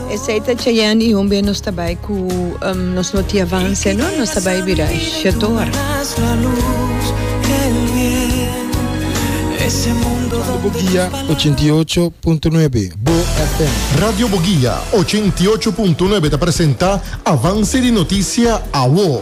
Esei ta Cheyenne y hunbe nos ta bay cu nos no tin avance no nos ta bay bira Shetor. Radio Boguia ochenta i ocho punto nuebe, bo FM. Radio Boguia ochenta i ocho punto nuebe ta presenta Avance di noticia, awo.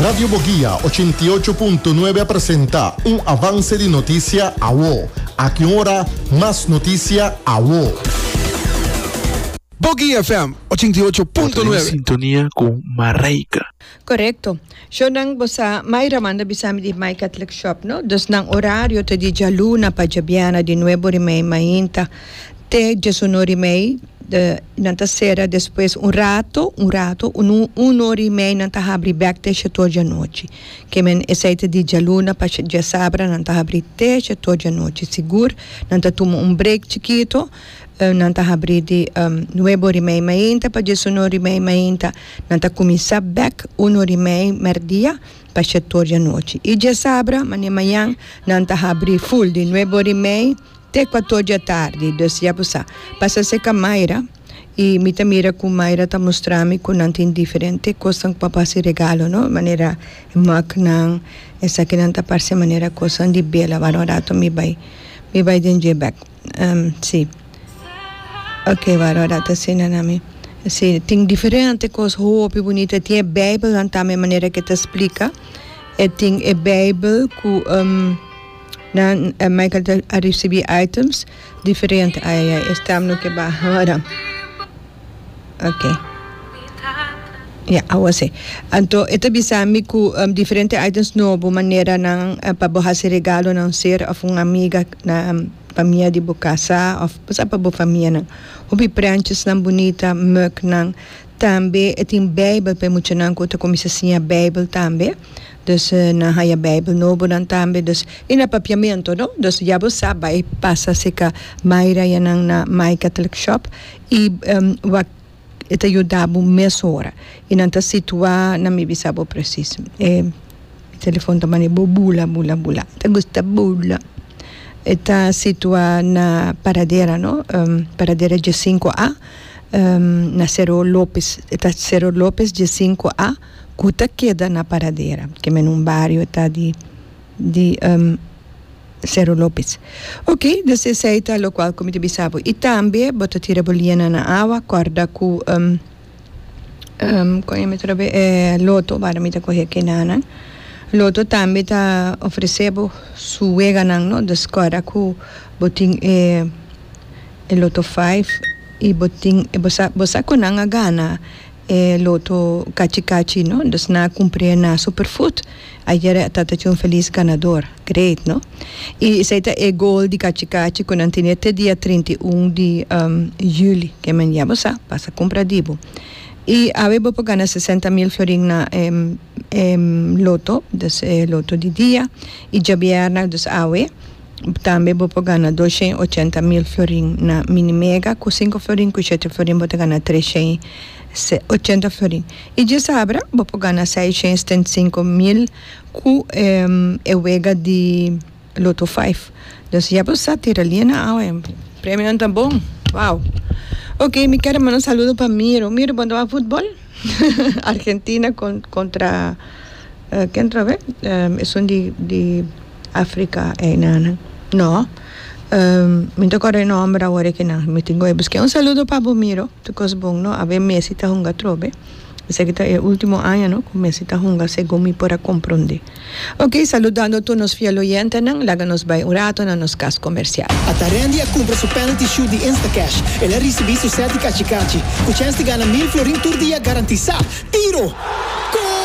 Radio Boguia ochenta i ocho punto nuebe a presenta un avance di notisia awo. Aki un ora mas notisia awo. Boguia FM ochenta i ocho punto nuebe. Bo ta den sintonia cu Mareika. Correcto. Show nan bo sa Mayra manda bisa mi di Maica Tlikshop no. Dus nan horario ta di djaluna pa djabiana di nuebo rimei mainta. te diesun ora i mei nan ta sera despues un rato un rato un ora i mei nan ta habri bek te she tur dianochi keme esei ta di dialuna pa diasabra nan ta habri te she tur dianochi sigur nan ta tuma un break chikito nan ta habri di nuebe ora i mei mainta pa diesun ora i mei mainta nan ta kuminsa bek un ora i mei merdia pa she tur dianochi i diasabra mañan nan ta habri full di nuebe ora i mei Te kuator di atardi, dus ya bo sa. Pasa serka Mayra i mi ta mira ku Mayra ta mustra mi ku nan tin diferente kosnan pa hasi regalo, no? Manera e mugnan, esakinan ta parse manera kosnan di bela. Wara un rato mi bai, mi bai den dje bèk. Um, sí. Oke, wara un rato asina na mi. Sí, tin diferente kos hopi bunita. E tin e Beibelnan tambe, manera ku e ta splika. E tin e Beibel ku, um. Nan Michael ta a recibi items diferente ai ai ai e stem no ke baha ora ok ya awa si anto e ta bisa mi ku um, diferente items nobo manera nan eh, pa bo hasi regalo nan ser of un amiga na um, pamia di bo kasa of basa pa bo famia nan hopi prenches nan bunita mug nan tambe e tin bijbel pa e muchanan ku ta kuminsa siña bijbel tambe Dus nan haña Bijbel nobonan tambe, dus i na papiamentu, no. Dus ya bo sa bai pasa si ka Myra ya nan na My Catholic Shop i wak e ta yuda bo mes ora. I nan ta situá, nan mi bisa bo presis. E telefòn ta mane bo bula, bula, bula. Ta gusta bula. E ta situá na paradera, no, paradera G5A, na Cerro Lopez. E ta Cerro Lopez G5A. ku ta keda na Paradera, ke mende un bario ta di di Sero Lopes. Ok, des esei ta lokual ku mi ta bisa bo. I tambe bo ta tira bo liena na awa, kòrda ku kon emi otro be e Loto, wak mi ta kohe kenanan. Loto tambe ta ofresé bo su weganan, no? Dus kòrda ku bo tin e e Loto Five i bo tin bo sa bo sa kon nan a gana. E loto kachi kachi no dus na kumpré na superfood ayere a tata chun felis ganador great no y esey ta e goal di kachi kachi cu nan tene te dia trinta y un di juli ke men ya bo sa pasa kumpra di bo y awe bo por gana sesenta mil florin na loto dus e loto di dia y djabièrnè dus awe tambe bo por gana doshen y ochenta mil florin na mini mega cu sinku florin cu shete florin bo ta gana treshen y ochenta florin y dje sabra bo por gana seishen y setenta y sinku mil cu e wega di Loto vijf. Nos ya bo sa tira liena awe. Premionan ta bon. Wow. Ok, mi kere manda un saludo pa Miro. Miro, bon ta wak futbol? Argentina con, contra eh, ken tra be? Um, esun di, di Africa einan. No. Um, mi ta corre nomber awor ekinan. Mi tin go e busque. Un saludo pa bo, Miro. Tu cos bon, no? Awe Messi ta hunga trobe. Esaki ta e ultimo aña no ku mester ta hunga segun mi por a komprondé. Ok, saludando tur nos fiel oyentenan, laga nos bai un rato na nos kas komersial. Atarendi a kumpra su penalty shoot di Instacash, el a risibí su set di kachi kachi, ku chèns di gana mil florin tur dia garantisá. Tiro! Goal!